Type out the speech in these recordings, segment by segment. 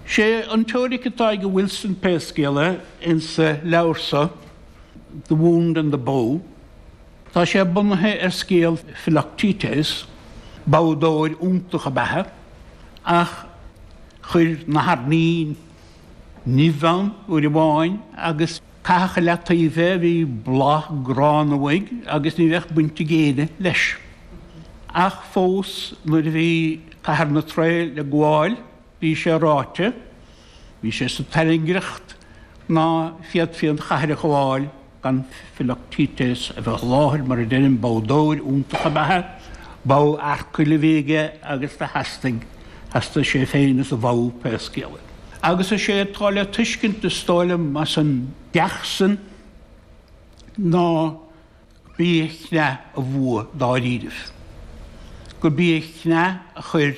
Sé an teoiric atá ag Wilson, pé scéal é, insa leabhar so, The Wound and the Bow, tá sé bunaithe ar scéal Philoctetes, boghdóir iontach ab ea é, ach chuir nathair nimhe nimh ann uair amháin agus, Caitheadh i leataoibh é, bhí boladh gránna uaidh agus ní bheadh baint ag éinne leis. Ach fós nuair a bhí Cathair na Trae le gabháil bhí sé ráite, bhí sé sa tairngreacht, ná féadfaí an chathair a ghabháil gan Philoctetes a bheith i láthair, mar a deirim boghdóir iontach ab ea é, bogha Earcail a bhí aige agus do theastaigh, theastaigh sé féin is a bhogha pé scéal é. agus is é atá le tuiscint, is dóigh liom, as an gceacht sin ná gurb í a chneadh a bhua dáiríribh, gurb í a chneadh a chuir,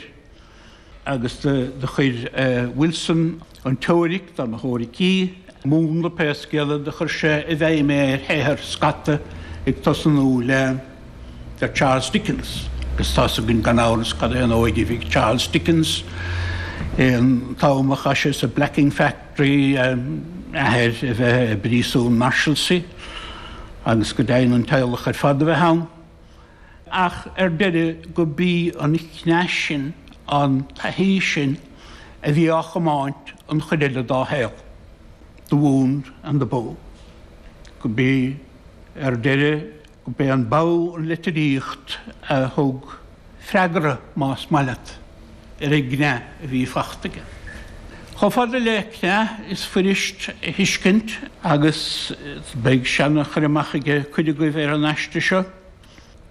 agus do chuir Wilson an teoiric, dá mba theoiric í, múnla pé scéal é, do chuir sé i bhfeidhm é ar shaothar scata ag tosnú le. Ar Charles Dickens, agus tá's againn gan amhras cad é an óige a bhí ag Charles Dickens an t-am a chaith sé sa blacking factory, a athair a bheith i bpríosún Marshalsea agus go deimhin an teaghlach ar fad a bheith ann, ach ar deireadh gurb í an chneadh sin, an taithí sin a bhí á chomáint an chuid eile dá shaol, the wound and the bow, gurb í ar deireadh B'é an bogha an litríocht a thug freagra, más maith leat, ar an gcneadh a bhí fachta aige. Chomh fada le cneadh is fuirist a thuiscint, agus beidh seana chur amach ag cuid agaibh ar an aiste seo,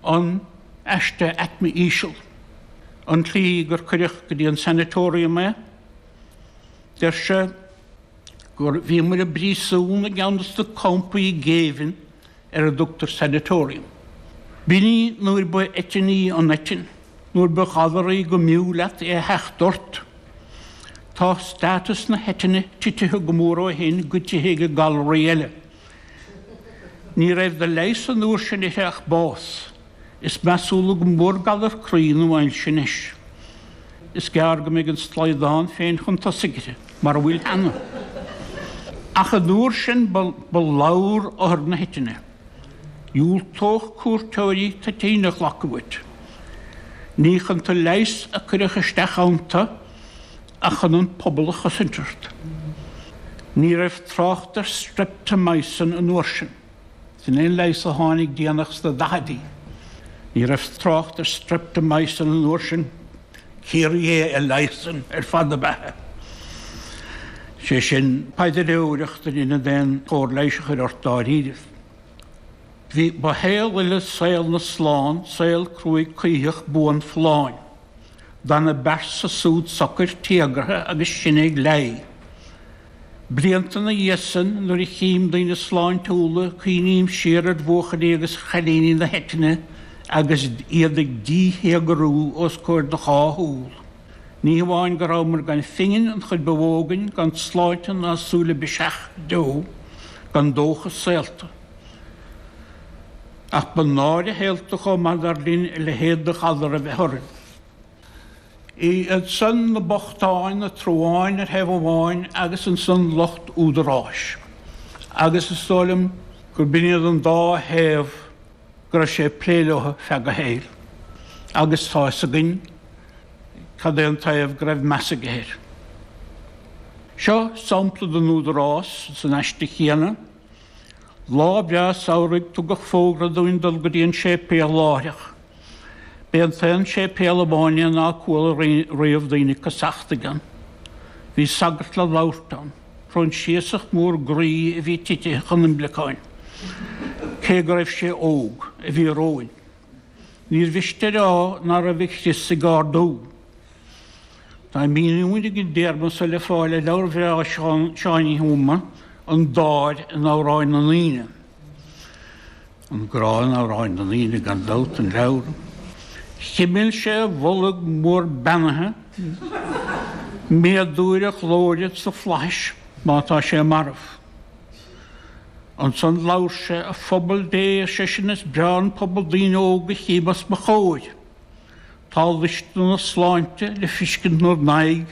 an aiste aicme íseal, an tslí gur cuireadh go dtí an sanatorium é, deir sé, gur bhíomair i bpríosún i gceann de sna campaí géibhinn ar a dtugtar sanatorium. B'in é nuair ba eitinn í an eitinn, nuair ba ghalar í go mb'fhiú leat í a theacht ort. Tá status na heitinne titithe go mór ó shin goidithe ag galraí eile. Ní raibh de leigheas an uair sin uirthi ach bás. Is measúla go mór galar croí nó ailse anois. Is gearr go mbeidh an slaghdán féin chun tosaigh uirthi, mara bhfuil cheana. Ach an uair sin ba lobhar othar na heitinne. Dhiúltódh cuairteoirí toitín a ghlacadh uait. Ní chun tú a leigheas a cuireadh isteach iontu ach chun an pobal a chosaint ort. Ní raibh trácht ar streptomycin an uair sin. Sin é an leigheas a tháinig déanach sna daichidí. Ní raibh trácht ar streptomycin an uair sin. Ciarraí é a leigheasann ar fad na beatha. Sé sin, paidireoireacht in ionad aon chóir leighis a chur ort dáiríribh. Bhí ba shaol eile saol na slán, saol cruaidh coimhthíoch buan folláin. D'fhan a bpearsa súd socair, téagartha agus sinn ag leá. Blianta ina dhiaidh san, nuair a chím daoine sláintiúla, cuimhním siar ar bhuachaillí agus chailíní na heitinne agus iad ag díthéagarú os comhair do dhá shúl. Ní hamháin go rabhamar gan phingin, an chuid ba mhó againn, gan tsláinte ná súil le biseach go deo, gan dóchas saolta. Ach ba náire shaolta chomh maith dar linn a leithéid de ghalar a bheith orainn. Iadsan na bochtáin, na truáin ar thaobh amháin agus ansan lucht údaráis, agus is dóigh liom gur b'in iad an dá thaobh go raibh sé ag plé leo feadh a shaoil. Agus tá 'fhios againn cad é an taobh go raibh meas aige air. Seo sampla den údarás san aiste chéanna. Lá breá samhraidh tugadh fógra dúinn dul go dtí an séipéal láithreach. B'é an t-aon séipéal amháin é ná cuala riamh daoine ag casachtaigh ann. Bhí sagart le labhairt ann, Proinsiasach mór groí a bhí titithe chun imleacáin, cé go raibh sé óg, a bhí romhainn. Níor mhiste a rá ná raibh a chrios ag ardú. Tá míniú ar an dtéarma so le fáil i leabhar bhreá Sheáin Uí Thuama, An Dáir in Amhráin na nDaoine. An Grá in Amhráin na nDaoine gan dabht an leabhar. Chimil sé a bholg mór beannaithe méadú ar a ghlóire sa flaithis má tá sé marbh. Ansan labhair sé, A phobal Dé, ar seisean, is breá an pobal daoine óga a chím os mo chomhair. Tá luisne na sláinte le fiscint 'núr n-aghaidh